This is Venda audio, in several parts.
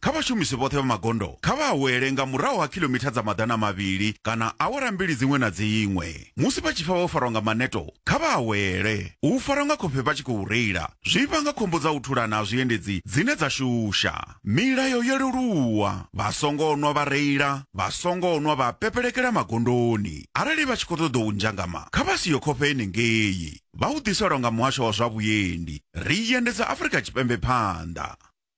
Kha vhashumisi vhoṱhe vha magondo kha vha awele nga murahu ha khilomitha dza maḓana mavhili kana awara mbili dziṅwe na dziṅwe. Musi vha tshi pfa vho farwa nga maneto, kha vha awele. U farwa nga khofhe vha tshi khou reila zwi vhanga khombo dza u thulana ha zwiendedzi dzine dza shusha. Milayo yo leluwa, Vha songo nwa vha reila, vha songo nwa vha pepelekela magondoni. Arali vha tshi khou ṱoḓa u nzhangama, kha vha siyo khofhe henengei. Vha u ḓiselwa nga Muhasho wa zwa Vhuendi. Ri i endedza Afrika Tshipembe phanḓa.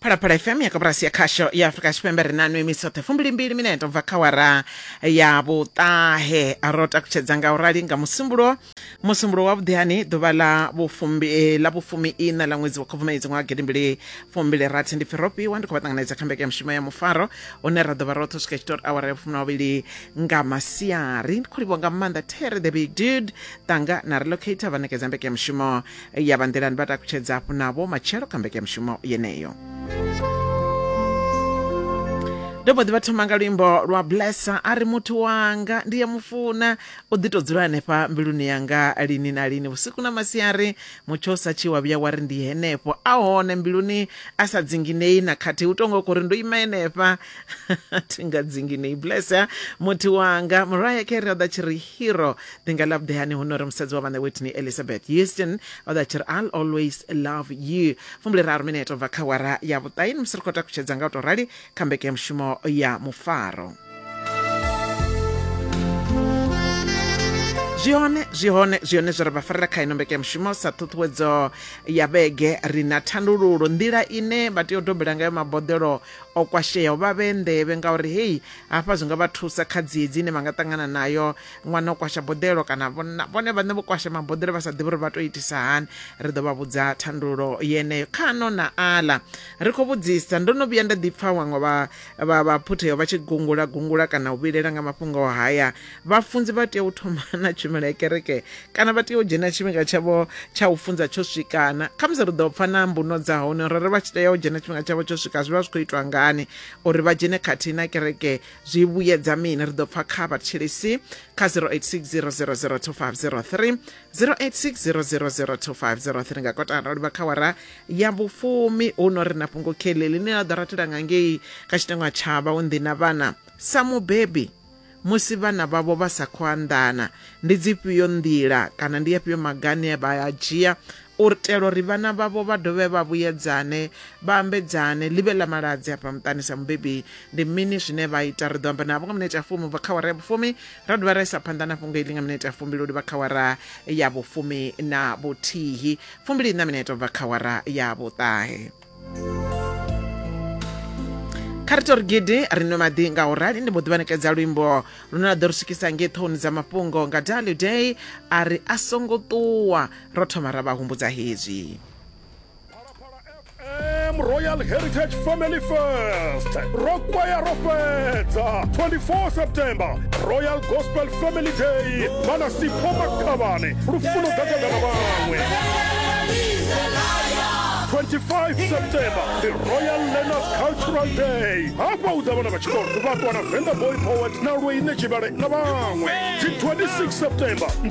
phalaphala fm ya koporasi ya khasho ya afurika tshipembe ri na nwe misoṱhe fumbilimbili minete ubva kha wara ya vhuṱahe ro takutshedza nga u rali nga musumbulo musumbulo wa vhuḓihani ḓuvha la vhufumbi eh, la vhufumi ina la ṅwedzi wa khubvumedzi ṅwaha gidimbili fumbili rathi ndi firopiwa ndi khou vha ṱanganedza kha mbekanya mushumo ya mufaro une ra ḓo vha roṱhe u swika tshitori awara ya vhufumi na vhavhili nga masiari ndi khou livhuwa nga maanḓa terry the big dude tanga na relocator vha ṋekedza mbekanya mushumo ya vha nḓilani vha takutshedza hafhu navho matshelo kha mbekanyamushumo yeneyo ndo mbo ḓi vha thoma nga luimbo lwa blessa a ri muthu wanga ndi ya mufuna u ḓi to dzula hanefha mbiluni yanga lini na lini vhusiku na masiari mutsho u sa tshi wa vhuya wa ri ndi henefho a hone mbiluni a sa dzinginei na khathihi u tonga khou ri ndo ima henefha thi nga dzinginei blessa muthu wanga muraya khere o ḓa tshi ri hero ndi nga ḽa vhuḓehani hu nori musadzi wa vhaṋe whitney elizabeth houston o ḓa tshi ri i'll always love you fumbule raru mineto bva kha wara ya vhuṱaini musi ri khou takutshedza nga u tou rali kha mbekanyamushumo ya mufaro zwi hone zwi hone zwi hone zwi re vha farela kha ino mbekanyamushumo sa ṱhuṱhuwedzo ya vhege ri na thandululo nḓila ine vha tea u dobela ngayo maboḓelo o kwasheaho vha vhe nḓevhe ngauri hei hafha zwi nga vha thusa kha dziedzi ine vha nga ṱangana nayo ṅwana o kwasha boḓelo kana vhone vhaṋe vho kwasha maboḓelo vha sa ḓivhi uri vha tou itisa hani ri ḓo vha vhudza thandululo yeneyo kha no na aḽa ri khou vhudzisa ndo no vhuya nda ḓipfa vhaṅwe vha vha phutheyo vha tshi gungula gungula kana u vhilela nga mafhungo o haya vhafunzi vha tea u thoma na tshumelo ya kereke kana vha tea u dzhena tshifhinga tshavho tsha u funza tsho swikana khamusi ri ḓo pfa na mbuno dza hone uri ri vha tshi tea u dzhena tshifhinga tshavho tsho swika zwi vha zwi khou itwa ngani uri vha dzhene khathihi na kereke zwi vhuyedza mini ri ḓo pfa kha vhathetshelesi kha 0860002503 0860002503 nga kotara livha kha wara ya vhufumi hu no ri na fhungo khele ḽine ḽa ḓo ratela nga ngei kha tshitangwa tsha vhaunḓi na vhana sa mubebi musi vhana vhavho vha sa khou anḓana ndi dzifhio nḓila kana ndi afhio magane vha a dzhia u itela uri vhana vhavho vha dovhe vha vhuyedzane, vha ambedzane, ḽi vhe ḽa maladzi afha muṱani. Sa mubebi, ndi mini zwine vha ita? Ri ḓo amba navho nga minete ya fumi u bva kha awara ya vhufumi, ra dovha ra isa phanḓa na fhungo iḽi nga minete ya fumbili u livha kha awara ya vhufumi na vhuthihi, fumbili-iṋa minete u bva kha awara ya vhuṱahe. kha ri tori gidi ri nwe maḓi nga u rali ndi mbo ḓi vhanekedza luimbo lune lwa ḓo ri swikisa ngei ṱhoni dza mafhungo nga daly day a ri a songo ṱuwa ro thoma ra vha humbudza hezwi FM Royal Heritage Family Fest. Rokwaya Rofedza, 24 September, Royal Gospel Family Day. Mana Sipho Makavani, Rufuno Gagagana Bangwe. 25 september the royal learners cultural day hafha hu ḓa vhana vha tshikolo vha ṱwa na venda boy poet na lweine tshivhale na vhaṅwe dzi 26 september ndi